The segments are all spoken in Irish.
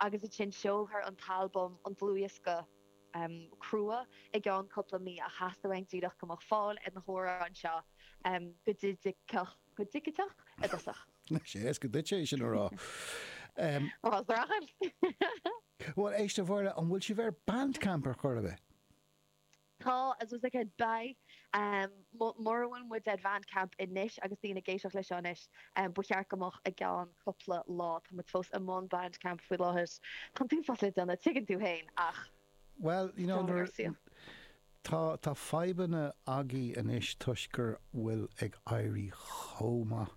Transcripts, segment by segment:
agus ansin seolfar an t-albam, an dlúthdhiosca crua i gceann cúpla mí ach theastaigh uaim díreach go mbeadh fáil ar na hamhráin seo go digiteach i dtosach. Is éasca duitse é sin a rá. Bhuel, braitheann. Bhuel, éist a Mháire, an bhfuil sibh ar Bandcamp ar chor ar bith? Tá, is dócha go mbeidh. Mura bhfuil muid ar Bhandcamp anois agus daoine ag éisteacht leis seo anois, ba cheart go mbeadh i gceann cupla lá. Tá muid fós i mbun Bandcamp faoi láthair. Tá an t-uafás le déanamh, tuigeann tú féin, ach Bhuel, you know, nuair a, tá, tá fadhbanna agaibh anois toisc go bhfuil ag éirí chomh maith.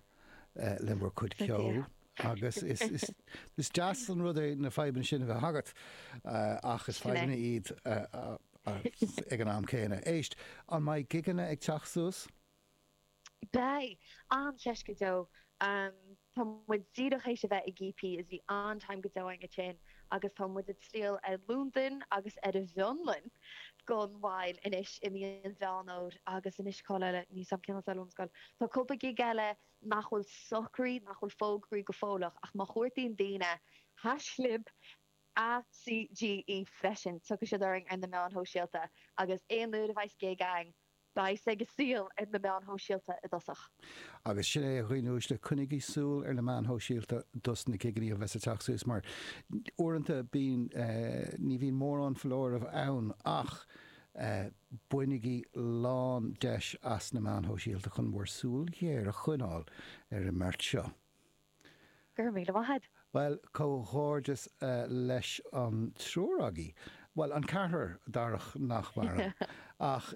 le bhur cuid ceoil agus is deas an rud é na fadhbanna sin a bheith agat ach is fadhbanna iad ag an am céanna. Éist, an mbeidh gigeanna ag teacht suas? Beidh, ambaiste go deo. Tá muid díreach th'éis a bheith ag EP is bhí an-time go deo againn ansin. agus tá muid ag triall ar Londain agus ar an bhFionlainn gan mhoill anois i mí an Mheán Fómhair agus anois cá háit eile, ní fheadar cén áit eile ón scoil. Tá cúpla gig eile nach bhfuil socraithe, nach bhfuil fógraithe go fóilleach ach má chuartaíonn daoine haischlib An CGE freisin, tiocfaidh siad orainn ar na meáin shóisialta agus aon uair a bheas gig ann Beidh sé go soiléir ar na meáin shóisialta i dtosach. Agus sin é a ghuí núis le coinnigí súil ar na meáin shóisialta dos na gigeannaí a bheas ag teacht suas mar uaireanta bíonn ní bhíonn mórán foláireamh ann ach bainigí lán deis as na meáin shóisialta chun bhur súil ghéar a choinneáil ar an mbeirt seo. Go raibh míle maith a'd. Bhuel, comhghairdeas leis an triúr agaibh, bhuel, an ceathrar, Darach nach maireann, ach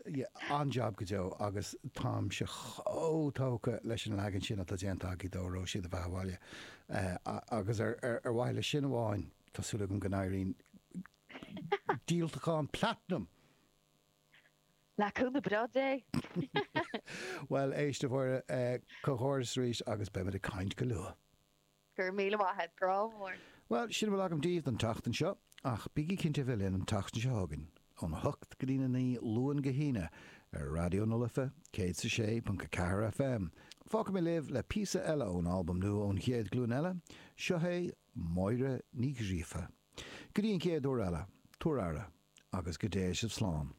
an-jab go deo agus táimse chomh tógtha leis an leagan sin atá déanta agaibh de Óró sé do bheatha abhaile agus ar mhaithe le sin amháin tá súil agam go n-éiríonn díoltachán platanam! Le cúnamh breá Dé. Bhuel, éist, a Mháire, comhghairdeas arís agus beimid ag caint go luath. Go raibh míle maith a'd, grá mór. Bhuel, sin a bhfuil agam daoibh don tseachtain seo, ach bígí cinnte a bheith linn an tseachtain seo chugainn, ón 8 go dtí an 9 Luan go hAoine, ar Raidió na Life, céad is a sé ponc a ceathair FM. Fágfaidh mé libh le píosa eile ón albam nua ón Chéad Ghlúin Eile, seo é Máire Ní Ghríofa. Go dtí an chéad uair eile, tabhair aire, agus go dté sibh slán.